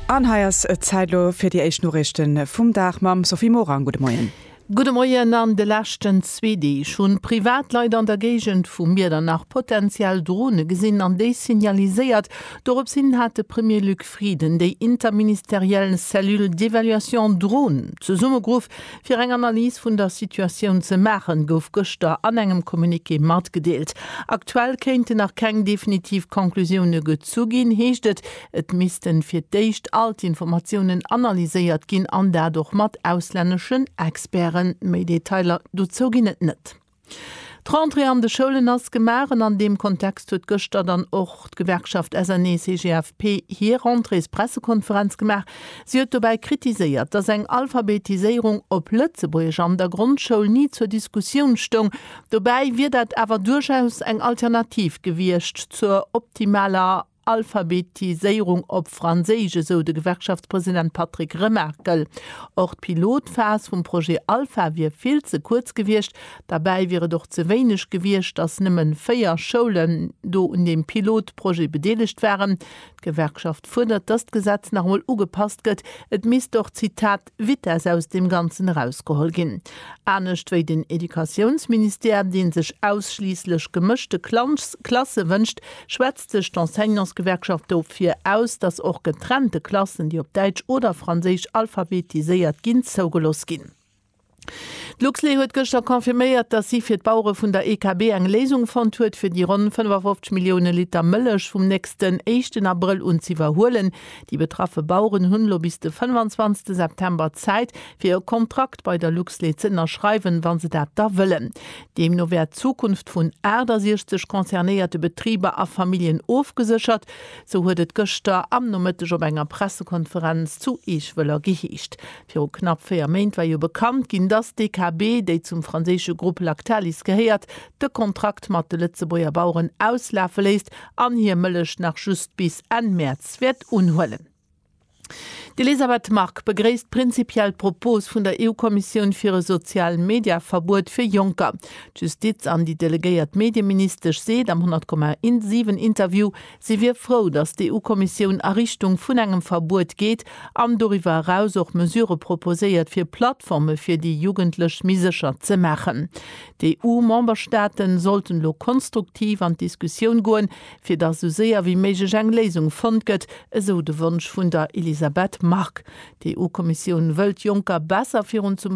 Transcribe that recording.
An hei ass et Zäit elo fir déi éischt Noriichte vum Dag mam Sophie Morang. Gudde Moien. Gudde Moien. An de leschten zwee Deeg hunn Privatleit an der Géigend vu Miedernach potenziell Drone gesinn an déi signaliséiert. Dorops hin hat de Premier Luc Frieden déi interministeriell Cellule d'évaluation Drone zesummegeruff, Fir eng Analys vun der Situatioun ze maachen, gouf gëschter an engem Communiqué matgedeelt. Aktuell kéinten nach keng definitiv Conclusioune gezu ginn, heescht et. Et missten fir d'éischt all d'Informatiounen analyséiert ginn an dat och mat auslänneschen Experten. Méi Detailer dozou ginn et net. D'Rentrée an de Schoulen ass gemaach an an deem Kontext huet gëschter dann och d'Gewerkschaft SNEE-CGFP hir Rentréespressekonferenz gemaach. Si huet dobäi kritiséiert, datt eng Alphabetiséierung op Lëtzebuergesch an der Grondschoul ni zur Diskussioun stoung. Dobäi wier dat awer duerchaus eng Alternativ gewiescht zur optimaler. Alphabetiséierung op Franséisch, esou de Gewerkschaftspresident Patrick Remaerkel. Och d'Pilotphas vum Projet Alpha wier vill ze kuerz gewiescht. Derbäi wier et och ze wéineg gewiescht, datt nëmme véier Schoulen do un deem Pilotprojet bedeelegt waren. D'Gewerkschaft fuerdert, datt d'Gesetz nach emol ugepasst gëtt. Et misst och, Zitat, Vitess aus deem Ganzen erausgeholl ginn. Anescht wéi den Educatiounsministère, dee sech ausschliisslech gemëschte Klasse wënscht, schwätzt sech d'Enseignantsgewerkschaft dofir aus, datt och getrennte Klassen, déi op Däitsch oder Franséisch alphabetiséiert ginn, zougelooss ginn. D'Luxlait huet gëschter confirméiert, datt si fir d'Bauere vun der EKB eng Léisung fonnt huet, fir déi ronn 55 Millioune Liter Mëllech vum nächsten éischten Abrëll un z'iwwerhuelen. Déi betraffe Baueren hunn elo bis de 25 September Zäit fir e Kontrakt bei der Luxlait ze ënnerschreiwen, wann se dat da wëllen. Deemno wär d'Zukunft vun 68 concernéierte Betriber a Familljen ofgeséchert, sou huet et gëschter am Nomëtteg op enger Pressekonferenz zu Eech-Wëller geheescht. Viru knapp 4 Méint war jo bekannt ginn, dass d'DKB, déi zum franséische Grupp Lactalis gehéiert, de Kontrakt mat de Lëtzebuerger Baueren auslafe léisst an hir Mëllech nach just bis Enn Mäerz wäert unhuelen. D'Elisabeth Margue begréisst prinzipiell d'Propos vun der EU-Kommissioun fir e Sozial-Media-Verbuet fir Jonker. D'Justiz an déi delegéiert Medieministesch seet am 100,7 Interview, si wier frou, datt d'EU-Kommissioun a Richtung vun engem Verbuet geet an doriwwer eraus och Mesure proposéiert, fir Plattforme fir déi Jugendlech méi sécher ze maachen. D'EU-Memberstaaten sollten elo konstruktiv an d'Diskussioun goen, fir datt esou séier wéi méiglech eng Léisung fonnt gëtt, esou de Wonsch vun der Elisabeth Margue. D'EU-Kommissioun wëllt Jonker besser virun zum.